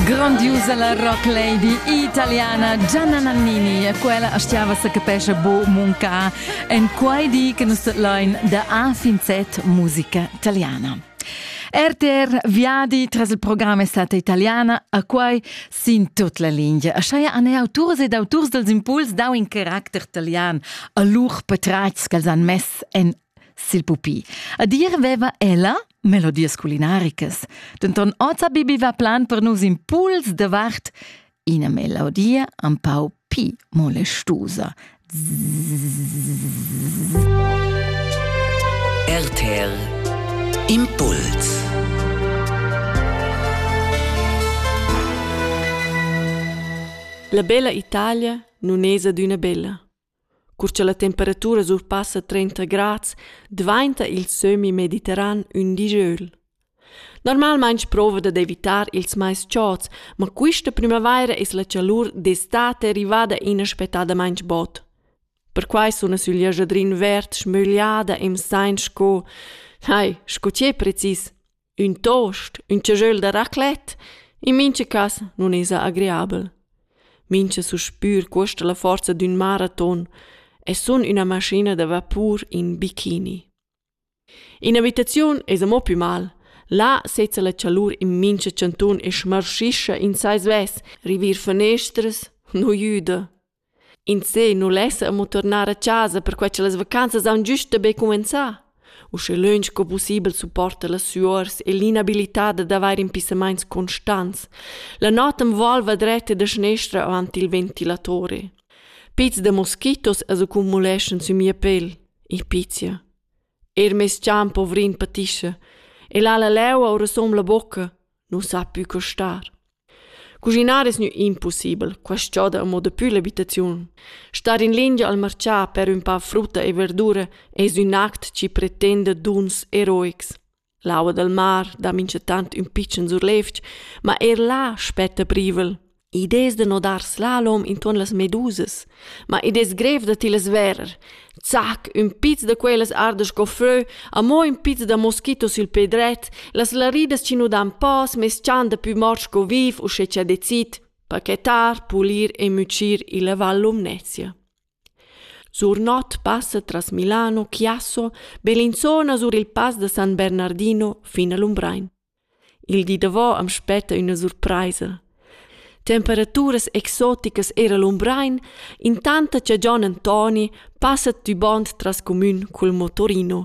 Grandiusa la rock lady italiana Gianna Nannini e quella stiava se capesce bo munca en quei di che nus lein da a fin set musica italiana. RTR Viadi tras il programma è stata italiana, a quai sin tut la linea. A Schaya han autors ed autors dels impuls dau in caracter italian a lur patratgs che han mess en sil pupi. A dir veva ella melodias culinaricas. Denton oz bibiva plan per nus impuls davart ina melodia un pau pi molestusa. RTL Impuls La bella Italia nun es adüna bella. Cur cha la temperatura surpassa trenta grads dvainta il sömmi mediterran ün digiöl. Normalmaing prouva dad evitar ils mais chods, ma quista prümavaira es la chalur d'estate rivada inaspettadamaing bod. Perquai suna sül jaschadrin verd schmögliada e m'saint sco, hai, sco che precis, Ün toast, ün tschagöl da raclette, in mincha cas nun esa agreabel. Mincha suspür cuosta la forza d'ün maraton e sun üna maschina da vapur in bikini. In abitaziun esa mo pü mal. Là sezza la chalur in mincha chantun e schmarschischa in sai svess, rivir fanestras nu jüda. In seh nu lessa amo turnar a chasa perquai cha las vacanzas haun güst da be cumenzà. Uschè lönch co pussibel supporta las suors e l'inabilità d'avair impissamaints constants. La not am volva dretta da schnestra avant il ventilatore. Pizs da moskitos as accumuleschan sü mia pel, il pizia. Er meis chan povrin patischa, e là la leu aura som la bocca, nu sa pü co star. Cuschinar es gnü impussibel, quaist giò da amo dapü l'abitaziun. Star in lingia al marchà per ün pa frutta e verdura es ün act chi pretenda duns eroics. L'aua dal mar dà minchatant ün pitschen surlevg, ma eir là spetta privel. Id es da nodar slalom intuorn las medusas. Ma id es grev da tillas verer. Zac, ün piz da quellas ardas sco fö, amo ün piz da moschito sül pè dret, las laridas chi nu dan pas meschan dapü mort sco viv uschè cha decid pachetar, pulir e mücir illa Val Lumnezia. Sur not passa tras Milano Chiasso, Bellinzona sur il Pass da San Bernardino fin a Lumbrein. Il di davò am spetta üna surpraisa. Temperaturas exoticas eir a Lumbrein, intant cha Gian Antoni passa tü bond tras cumün cul motorino.